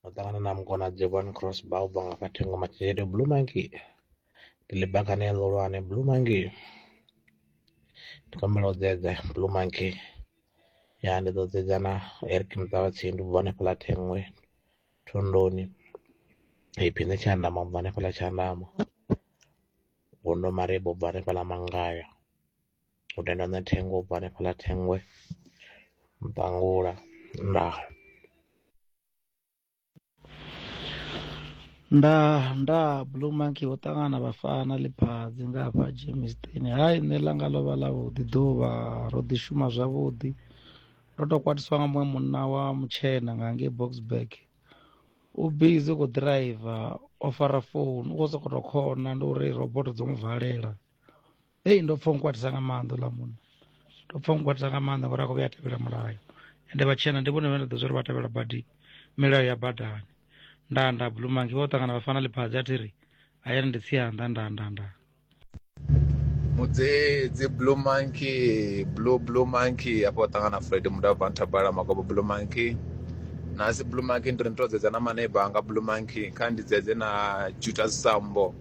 no ṱangana na mukona Jevon Cross Bauba nga kha thengo matshelo Blue Monkey ndi ḽibakane ḽo lwane Blue Monkey ndi kombela u dzedza Blue Monkey ya ndi ḓo dzedza na Eric Muṱavhatsi ndi bva hanefho ḽa thengwe thondoni iphi nṋe tshandama u bva hanefho ḽa tshandama gondo marebo u bva hanefho ḽa mangaya u tenda nṋe thengo ubva hanefhaḽa Thengoe Mpangula ndaa. Nda nda blue monkey ho ṱangana vhafana ḽiphadzi nga hafha Germiston hai nṋe ḽanga ḽo vha ḽa vhuḓi ḓuvha ro ḓi shuma zwavhuḓi ndo tou kwatiswa nga muṅwe munna wa mutshena nga ngei boxburg u bizi u khou ḓiraiva o fara founu u khou sokou tou khona ndi uri roboto dzo mu valela hei ndo pfa nkwatisa nga maanḓa ḽa munna ndo pfa nkwatisa nga maanḓa ngori a khou vhuya a tevhela mulayo ende vhatshena ndi vhone vhe nda ḓo zwa uri vha tevhela badi milayo ya badani nda nda blue monkey vha u ṱangana vha fana ḽiphadzi a thi ri hayani ndi tsianda nda nda nda mudzedzi blue monkey blue blue monkey afho u ṱangana fred mudavha nthabala magobo blue monkey nasi blue monkey ndi ri ndi to dzedza na maneiba anga blue monkey kha ndi dzedze na jutas sambo